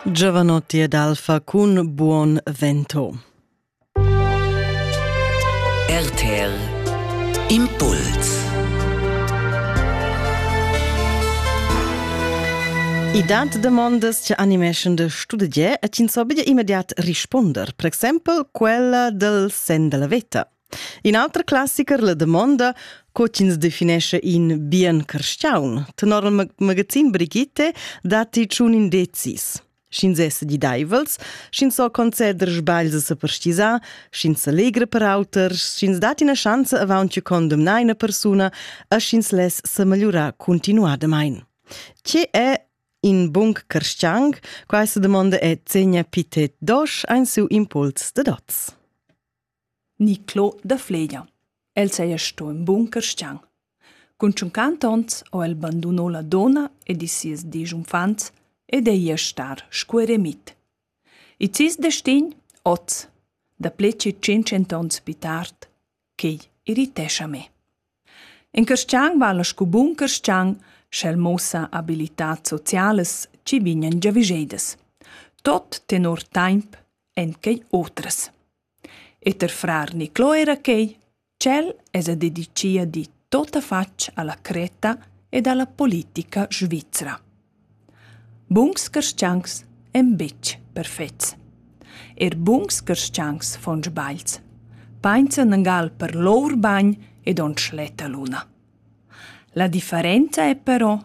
Giovanotti ed Alfa cun Buon Vento. RTL Impuls I dat demandas che animeschan de studie e ins obige immediat risponder, per exempel quella del sen della veta. In auter classicher, La damonda, co ch'ins definescha in bien carstgaun. Tenor il magazin Brigitte datti tschun indezis. Sch'ins è sedidaivels, sch'ins so conceder sbagls a sa perstisar, sch'ins sa legra per auters, sch'ins dat ina schanza avant che condemnar ina persuna e sch'ins less sa megliurar continuadamain. Tge è in bun carstgang? Questa domanda è Zegna Pitet Dosch ein su impuls de dots. ni Clo da Fleglia. El saja sto ün bun carstgaun. Cun tschunquant ons ho el banduno la donna ed ils sies desch uffants ed ei ia star sco eremit. Il sis destin, oz, da pled tschient onns pli tard, quei irritescha me. In carstgaun vala sco bun carstgaun, sch'el muossa abilitats socialas chi vegnan giavüschedas. Tot tenor taimp èn quei otras. E ter frar Niclò era quei, ch'el esa dedichia di totafatg alla Creta ed alla politica svizra. Buns carstgauns ein buc perfets. Er buns carstgauns fan sbagls, painsan engal per lur bagn ed on schletta luna. La differenza è però,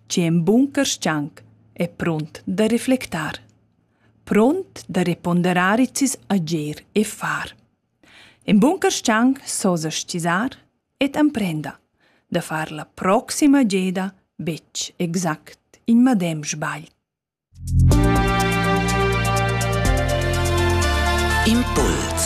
che in bun carstgaun è pront da reflectar, pront da reponderar its agir e far. In bun carstgaun so sa stisar ed emprenda da far la proxima geda betg exact in medem sbagl. Impuls